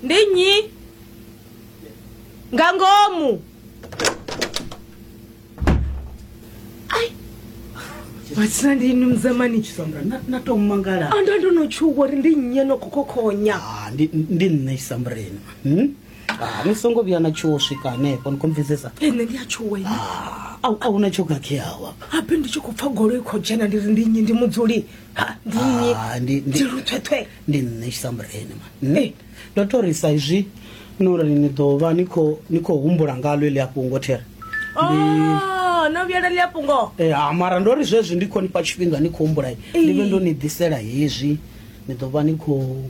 ndi nnyi nga ngomu ai matsina ndi inu mzamani Sandra, na- natomangala anda ndonotchuka kuti ndi nnyi anokhokhonya Ah, ndi ndi nṋe isambreni Hmm? Ah, ni songo vhuya na tshuwo swika hanefho ni komvizesa ene ndi atshuwa ine a hu na tsho khakheaho apa ape ndi tshi khou pfa goloi khou dzhena ndi ri ndi nnyi ndi mudzuli Ah, ndi- ndi- thwethwe ndi nṋe tshisambureni ma nṋe ndo to ri sa izwi no ri ni ḓo vha ni khou- ni khou humbula ngalo eḽi a fhungo there Oh, no vhuyela ḽi a fhungo Eh, ha mara ndo ri zwezwi ndi khou nifha tshifhinga ni khou humbula ndi vhe ndo ni ḓisela hezwi ni ḓo vha ni khou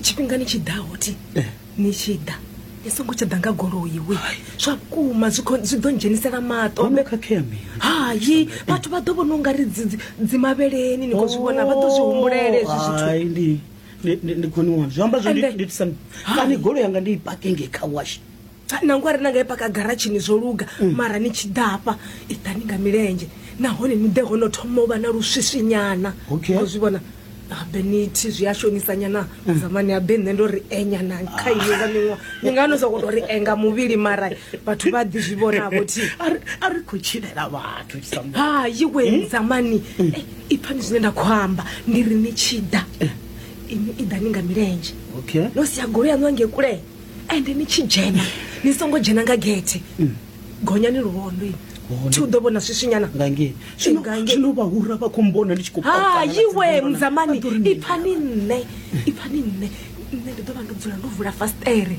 tshifhingani tshi ḓaho thi eh. ni tshi ḓa ni songo tsha ḓa nga goloi we zwa vhukuma zwi ḓo dzhenisela maṱohayi vhathu vha ḓo vhona u nga ri dzimavheleni ni kho zwi vhona vha ḓo zwi humbulele zwi zwithu ndi khoni wana zwi amba zwokani goloi yanga ndi i pakinge kha washi nangwe a ri na nga i paka garatshini zwo luga mm. mara ni tshi ḓafha i ḓani nga milenzhe nahone ni ḓe hono thoma u vha na luswiswinyana o zwi vhona habe nithi zwi a shonisanyana mm. zamani habe nṋe ndo ri enyana kha iyo nga miṅwa ni nga no sokou tou ri enga muvhili mara vhathu vha ḓi zwi vhonavho thi a ri khou tshilela vhathu hayi we mm. zamani eh, i pfani zwine nda khou amba ndi ri ni tshi ḓa eh. ini i ḓani nga milenzhe no sia golo yaṋu ange kulea ende ni tshi dzhena ni songo dzhena nga gethe gonyani luvhondoi thi u ḓo vhona swiswinyana ngangei Zwino- Ngangei. zwino vhahura vha khou mbona ndi tshi khou kopana na hayiwe dzimbono. mudzamani Vha ḓo ri mini? ipfani nṋe ipfani nṋe nṋe ndi ḓo vha ndo dzula ndo vula fastere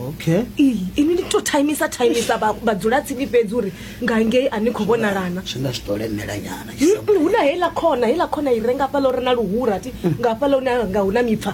okay iyi ini ni to timisa timisa vha- vhadzulatsini fhedzi uri ngangei a ni khou vhonalana zwi nga zwi ḓo lemela nyana Mm, hu na heiḽa khona heiḽa khona i renga fhala uri na luhura ti nga fhala hune nga hu na mipfa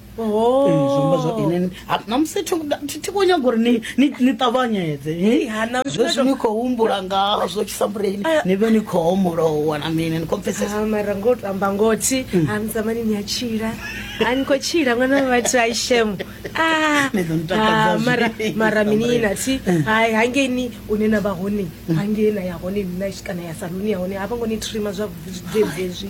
Oh. Eh, zwiamba zwa ine namusi thi khou nyaga uri ni ṱavhanyedze zwe zwi ni khou humbula ngazwo tshisambuleni ah. ni vhe ni khou homolowa na mini ni khou pfesesa ah, mara ngo to amba ngothi mm. a ah, mzamani ni a tshila a ni khou tshila ṅwana wa vhathu a ishemo mara mara minina thi mm. hai hangei ni une na vha hone mm. hangei na ya hone nina kana ya saluni ya hone a vha ngo ni trima zwavhuḓi zwi